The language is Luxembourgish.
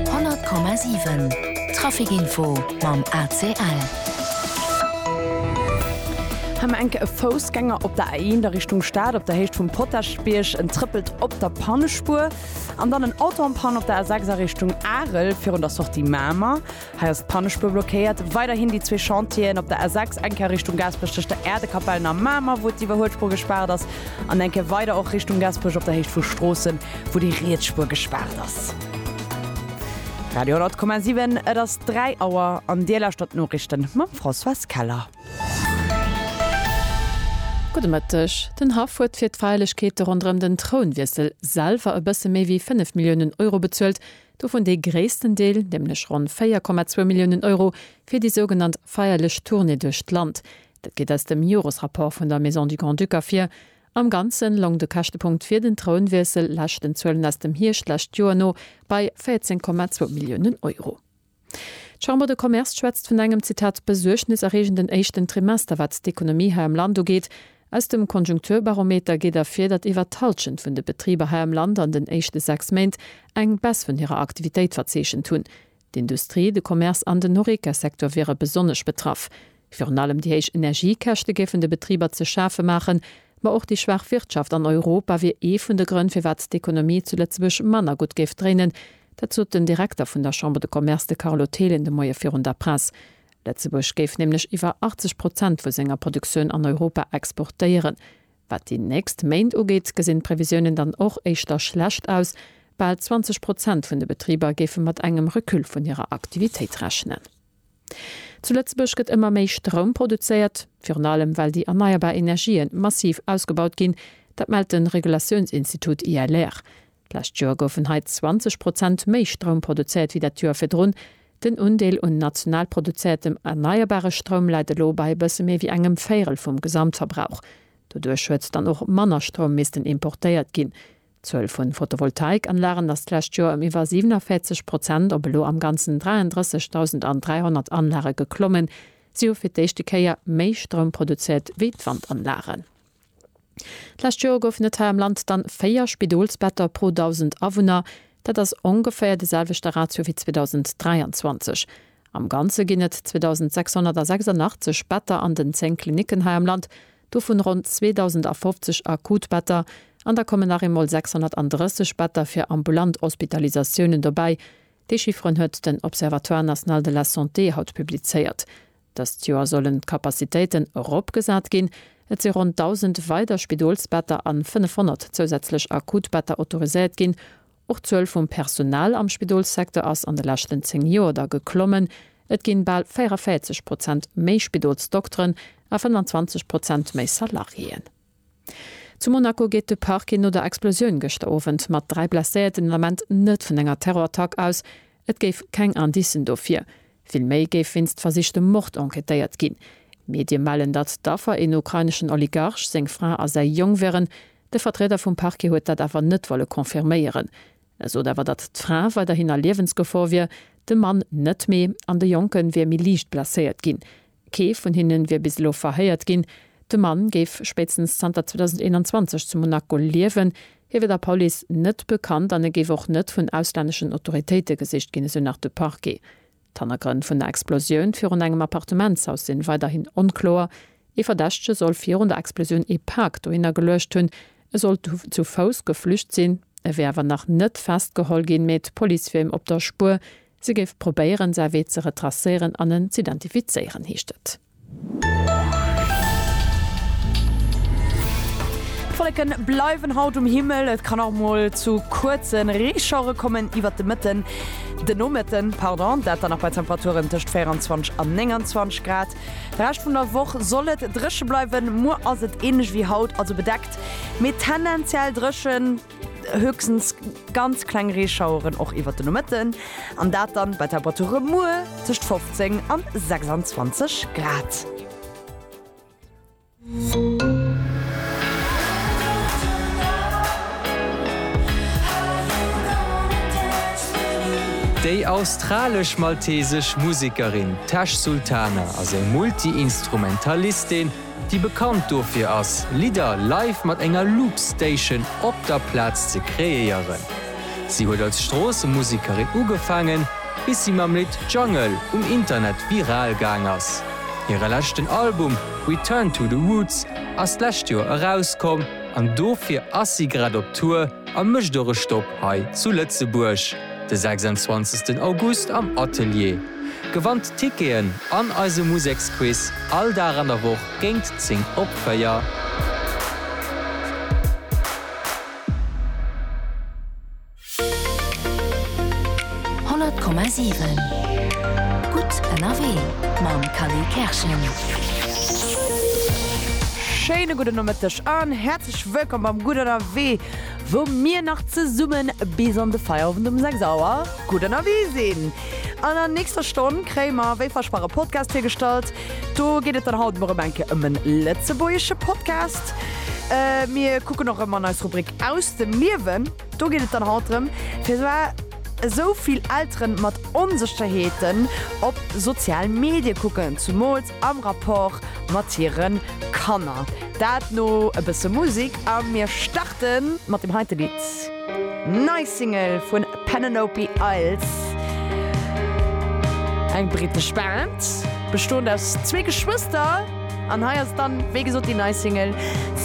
100,7 Trafic info mam ACL. Hei mer enke e Foussgänger op der A1 a Richtung Stad op der Héicht vum Potaschbierg. En trëppelt op der Pannespuer. An dann en Auto en panne op der A6 a Richtung Arel virun der Sortie Mamer. Hei ass d'Pannespuer blockéiert. Weiderhin déi zwee Chantieren op der A6, eng Kéier Richtung Gaasperech tëscht der Äerdekapellen a Mamer, wou d'Iwwerhuelspuer gespaart ass, an eng Kéier weider och Richtung Gaasperech op der Héicht vu Stroossen, wou déi riets Spuer gespaart ass. Radio 10,7, Et ass 3 Auer an Dir lauschtert d'Noriichte mam Françoise Keller. Gudde Mëtteg. Den Haff huet fir d'Feierlechkeete ronderëm den Trounwiessel selwer e bësse méi wéi 5 Milliounen Euro bezuelt, Dovun dee gréissten Deel, nämlech ronn 4,2 Milliounen Euro, fir déi sougenannt feierlech Tournée duerch d'Land. Dat geet aus dem Joresrapport vun der Maison du Grand-Duc ervir. Am Ganze loung de Käschtepunkt fir den Trounwiessel, leschten Zuelen aus dem Hierscht d'lescht Joer no, bei 14,2 Milliounen Euro. D'Chambre de Commerce schwätzt vun engem, Zitat, besuergneserreegenden éischten Trimester, wat d'Ekonomie hei am Land ugeet. Aus dem Konjunkturbarometer geet ervir, datt iwwer d'Hallschent vun de Betriber hei am Land an den éischte sechs Méint eng Baisse vun hirer Aktivitéit verzeechent hunn. D'Industrie, de Commerce an den Horeca-Secteur wiere besonnesch betraff. Virun allem déi héich Energiekäschte géifen de Betriber ze schafe maachen, ma och déi schwaach Wirtschaft an Europa wier ee vun de Grënn, firwat d'Ekonomie zu Lëtzebuerg manner gutt géif dréinen. Dat sot den Direkter vun der Chambre de Commerce, de Carlo Thelen, de Moie virun der Press. Lëtzebuerg géif nämlech iwwer 80 Prozent vu senger Produktioun an Europa exportéieren. Wat déi nächst Méint ugeet, gesinn d'Previsiounen dann och éischter schlecht aus. Bal 20 Prozent vun de Betriber géife mat engem Recul vun hirer Aktivitéit rechnen. Zu Lëtzebuerg gëtt ëmmer méi Stroum produzéiert, virun allem well déi erneierbar Energië massiv ausgebaut ginn. Dat mellt de Regulatiounsinstitut ILR. D'lescht Joer goufen hei 20 Prozent méi Stroum produzéiert wéi dat Joer virdrun. Den Undeel un national produzéiertem erneierbare Stroum läit elo bei e bësse méi wéi engem Véirel vum Gesamtverbrauch. Doduerch huet dann och manner Stroum missten importéiert ginn. D'Zuel vun Photovoltaikanlagen ass d'lescht Joer ëm iwwer 47 Prozent op elo am Ganzen 33.300 Anlage geklommen. Si hu fir d'éischte Kéier méi Stroum produzéiert wéi d'Wandanlagen. D'lescht Joer goufen et hei am Land dann 4 Spidolsbetter pro 1.000 Awunner. Dat ass ongeféier de selwechte Ratio wéi 2023. Am Ganze ginn et 2.686 Better an den 10 Klinicken hei am Land. dovun ronn 2.050 Akutbetter, an da kommen nach eemol 630 Better fir ambulant Hospitalisatiounen dobäi. Déi Chifferen huet den Observatoire national de la santé haut publizéiert. Dëst Joer sollen d'Capacitéiten eropgesat ginn. Et si ronn 1.000 weider Spidolsbetter an 500 zousätzlech Akutbetter autoriséiert ginn. Och d'Zuel vum Personal am Spidolssecteur ass an de leschten 10 Joer da geklommen. Et ginn bal 44 Prozent méi Spidolsdokteren a 25 Prozent méi Salariéen. Zu Monaco geet de Parquet no der Explosioun gëschter Owend mat 3 Blesséierten den Ament net vun enger Terrorattack aus. Et géif keng Indicen dofir. Villméi géif wéinst versichtem Mord enquêtéiert ginn. Medie mellen, datt d'Affer een ukraineschen Oligarch, seng Fra a säi Jong wieren. De Vertrieder vum Parquet huet dat awer net wolle confirméieren. E sot awer, datt d'Fra weiderhin a Liewensgefor wier, de Mann net méi an de Jonke wier méi liicht blesséiert ginn. Kee vun hinnen wier bis elo verhéiert ginn. De Mann géif spéitstens zanter 2021 zu Monaco liewen. Hie wier der Police net bekannt an e géif och net vun auslänneschen Autoritéite gesicht ginn, esou nach de Parquet. D'Hannergrënn vun der Explosioun virun engem Appartementshaus sinn weiderhin onkloer. Ee Verdächtege soll virun der Explosioun ee Pak dohinner geluecht hunn. E soll zu Fouss geflücht sinn. E wier awer nach net festgeholl ginn, mee d'Police wier him op der Spuer. Si géif probéieren, säi Wee ze retracéieren an en z'identifizéieren, heescht et. D'Wolleken bleiwen haut um Himmel, et kann och mol zu kuerzen Reeschauere kommen iwwert de Mëtten, de Nomëtten pardon, dat dann nach bei Temperaturen tëscht 24 an 29 Grad. De Rescht vun der Woch soll et dréche bleiwen, muer ass et ähnlech wéi haut, also bedeckt mee tendenziell dréchen. Höchstens ganz kleng Reeschaueren och iwwert den Nomëtten, an dat dann bei Temperature muer tëscht 15 an 26 Grad. Déi australesch-maltesesch Musekerin Tash Sultana ass eng Multi-Instrumentalistin, déi bekannt dofir ass, Lidder live mat enger Loopstation op der Plaz ze kreéieren. Si huet als Stroossemusikerin ugefaangen, bis si mam Lidd Jungle um Internet viral gaang ass. Hire leschten Album Return to the Roots ass d'lescht Joer erauskomm an dofir ass si grad op Tour a mécht och e Stopp hei zu Lëtzebuerg. De 26 August am Atelier. Gewannt Ticketen an eise Museksquiz all Dag an der Woch géint 10 op 4. Honnert Komma siwen Gutt ënnerwee mam Kari Kerschen. Schéine gudde Nomëtteg an häerzlech wëllkomm beim Gutt ënnerwee. Wou mir nach zesummen bis an de Feierowend um 6 Auer gutt ënnerwee sinn. An der nächster Stonn kréie mer wéi versprach e Podcast virgestallt. Do geet et dann haut mol rëm eng Kéier ëm e lëtzebuergesche Podcast. Mir kucken och rëm an eis Rubrik Aus dem Liewen. Do geet et dann haut drëm, firwar esou vill Elteren mat Onsëcherheeten op sozial Medie kucken, zumools. am Rapport mat hire Kanner. Dat no e bësse Musik a mir starte mat dem heite Lidd, nei Single vu Penelope Isles, eng brittesch Band bestoend aus zwee Geschwëster an hei ass dann wéi gesot déi nei Single.